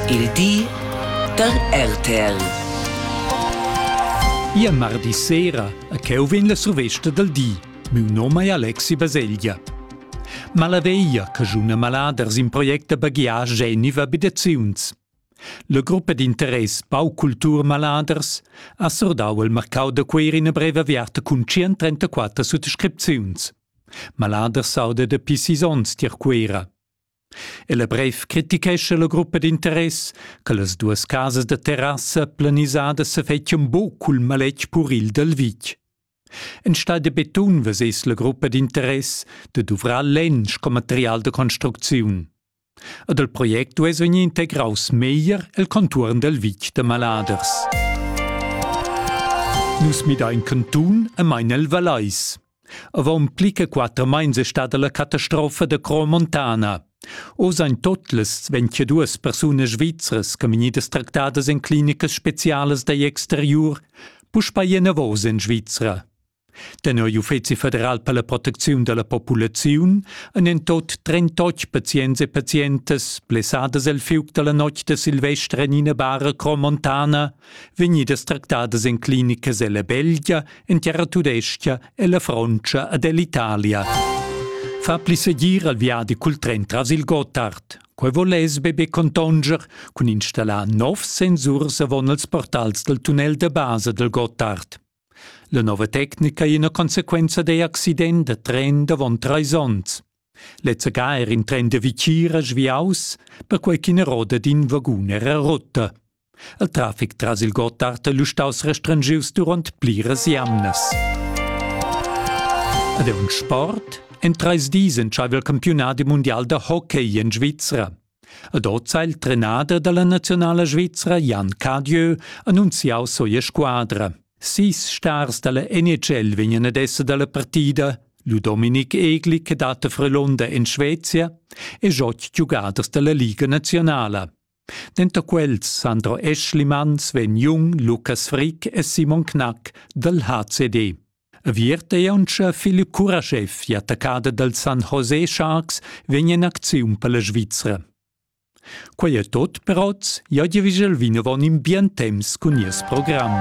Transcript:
Il di da RTL. Ia mardi sera a cheu vegn la survesta dal di. Miu nom è Alexi Baselgia. Malaveia, cajuna maladers in project da baghiar geniva bidaziuns. La gruppa d'interess Baukultur Maladers ha sordau il marcau da Queir ina breva aviarta cun 134 suttascripziuns. Maladers sauda da pcis onns tier Cuera. El brev critichescha la gruppa d'interess che las duas casas da terrassa planisadas sa fettian buc cul maletg puril dal vitg. Enstagl da betun vesess la gruppa d'interess de duvrar lenn sco material de construcziun. Ed il project duess vegnir integraus meglier el contuorn del vitg de Maladers. Nus midain cantun e mein el Valeis. Avon pli che quater meins è stada la catastrofa da Cro Montana. Oz ein totlas 22 persunas svizras che vegnidas tractadas en clinicas specialas dagl exteriur puspei enavos en Svizra. Tenor l'Uffeci federal per la protecziun dalla populaziun ein en tot 38 pazients e pazientas blessadas el fiug dalla notg de Silvester en ina bara Cro Montana vegnidas tractadas en clinicas ella Belgia, en terra tudescha e la Frontscha ed ell'Italia. Fa pli segir al viadi cul tren tras il Gotthard. Quei voless be be contonger cun installar nov sensurs avon els portals del tunnel de base del Gotthard. La nova tecnica è una conseguenza dei accident da tren davon treis onns. Lezza ga er in tren de Vicira sviaus, perquei ch'ina roda d'in vagun era rotta. Il trafic tras il Gotthard è lu staus restrengius duront pliras jamnas. Ed è un sport? En treis dis entscheiva il campionat mundial da hockey in Svizzera. Ed oz ha il trenader dalla nazionala svizra Jan Cadieu annunziau sua squadra. Sis stars dalla NHL vegnan ad esser dalla partida, lu Dominik Egli che dat a Frelunder in Svezia e otg giugaders dalla Liga nazionala. Denter quels Sandro Eschlimanns vegn Jung, Lukas Frick e Simon Knack dal HCD. Aviert ei auncha Philipp Kurashev, attaccada dal San José Sharks, vegn in acziun per la Svizra. Quei è tot per oz, ja dir vigel vinavon in bien temps cun nies program.